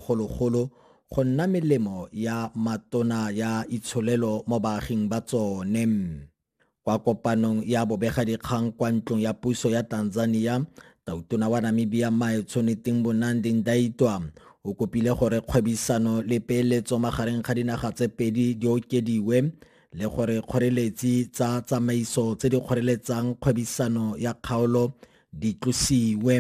golo-golo go nna melemo ya matona ya itsholelo mo baaging ba tsone. Kwa kopanong ya bobegadikgang kwa ntlong ya puso ya Tanzania, Tautona wa Namibia Mae Tshoneteng Bonandi Ndaitwa o kopile gore kgwebisano le peeletso magareng ga dinaga tse pedi di okediwe le gore kgoreletsi tsa tsamaiso tse di kgoreletsang kgwebisano ya kgaolo di tlosiwe.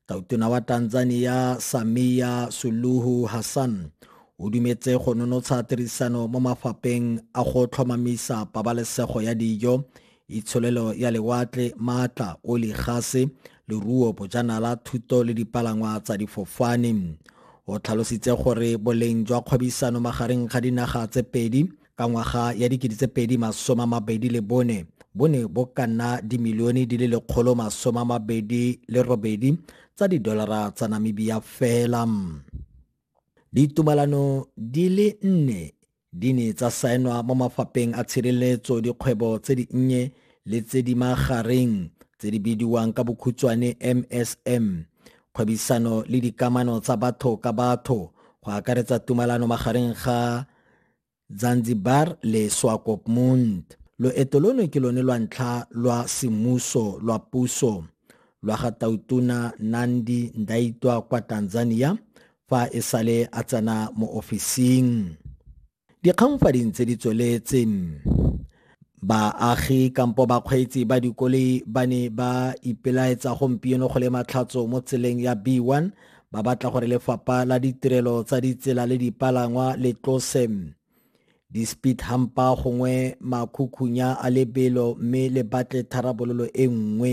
Tautona wa Tanzania Samia Suluhu Hassan o dumetse go nonotsha tirisano mo mafapeng a go tlhomamisa pabalesego ya dijo, itsholelo ya lewatle, maatla, oli, gase, leruo, bojanala, thuto le dipalangwa tsa difofane. O tlhalositse gore boleng jwa kgwebisano magareng ga dinaga tse pedi Ka ngwaga ya 2024 bo ne bo ka nna dimilione di le lekgolo masome a mabedi le robedi tsa didolara tsa Namibia fela. Ditumalano di le nne di ne tsa saenwa mo mafapheng a tshireletso dikgwebo tse di nnye le tse di magareng tse di bidiwang ka bokhutshwane MSM, kgwebisano le dikamano tsa batho ka batho, go akaretsa tumalano magareng ga Zanzibar le Swakopmund. Loeto lono ke lone lwa ntlha lwa semmuso lwa puso lwa ga Tautona Nandi Ndaitwa kwa Tanzania fa e sale a tsena mo ofising. Dikgang fa di ntse di tsweletse. Baagi kampo bakgweetsi ba dikoloi ba ne ba ipelaetsa gompieno go le matlhatso mo tseleng ya B1 ba batla gore lefapha la ditirelo tsa ditsela le dipalangwa le tlose di-speed humpa gongwe makhukhunya a lebelo mme le batle tharabololo e nngwe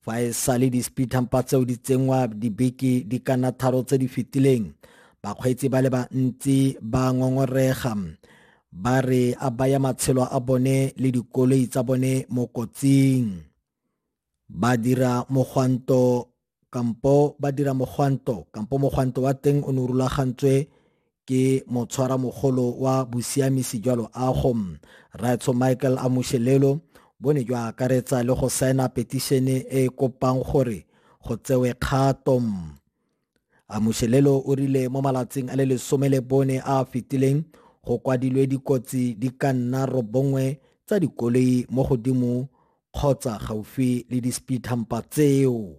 Fa e sale di-speedhampa tseo di tsenngwa dibeke di ka nna tharo tse di fetileng bakgweetsi ba le bantsi ba ngongorega ba re a baya matshelo a bone le dikoloi tsa bone mo kotsing ba dira mogwanto kampo ba dira mogwanto kampo mogwanto wa teng o ne o rulagantswe ke motshwaramogolo wa bosiamisi jwa loago raetsho michael amushelelo bo ne jwa akaretsa le go saena petišene e e kopang gore go tsewe kgato amushelelo o rile mo malatsing a le lesome le bone a a fetileng go kwadilwe dikotsi di ka nna robongwe tsa dikoloi mo godimo kgotsa gaufi le di-speed hampa tseo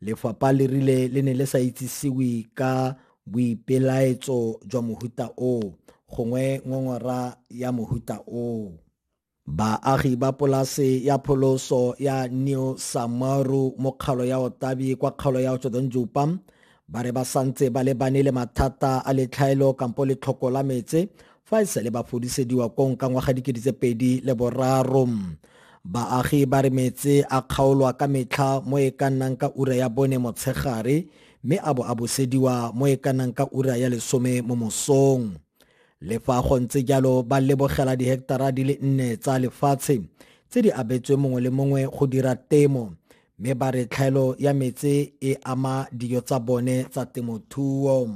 Lefapha le rile le ne le sa itsisiwe ka boipelaetso jwa mohuta o gongwe ngongora ya mohuta o. Baagi ba polase ya pholoso ya New Samaru mo kgalo ya Otabi kwa kgalo ya Otsodonjupa ba re ba santse ba lebane le mathata a letlhaelo kampo letlhoko la metse fa e sele ba fodisediwa kong ka ngwaga dikedi tse pedi le boraro baagi ba re metse a kgaolwa ka metlha mo e ka nnang ka ura ya bone motshegare mme a bo a bosediwa mo e ka nnang ka ura ya lesome mo mosong le fa go ntse jalo ba lebogela diheketara di le nne tsa lefatshe tse di abetswe mongwe le mongwe go dira temo mme ba re tlhaelo ya metse e ama dijo tsa bone tsa temothuo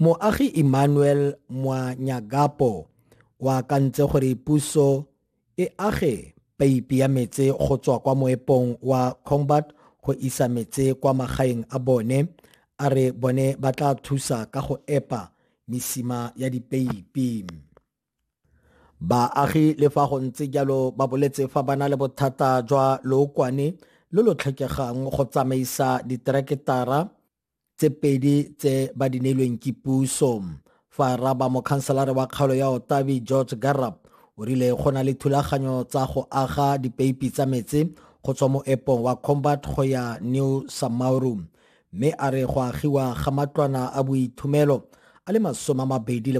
Moagi Emmanuel Mwanyagapo o akantse gore puso e age peipi ya metse go tswa kwa moepong wa Combat go isa metse kwa magaeng a bone a re bone ba tla thusa ka go epa mesima ya dipeipi baagi le fa go ntse jalo ba boletse fa ba na le bothata jwa lookwane lo lo tlhokegang go tsamaisa ditereketara tse pedi tse ba di neilweng ke puso fa raba mokhanselare wa kgaolo ya otabi george garab o rile go na le thulaganyo tsa go aga dipeipi tsa metsi go tswa mo epong wa combat go ya new samauru mme a re go agiwa ga matlwana a boithomelo a le masome a mabedi le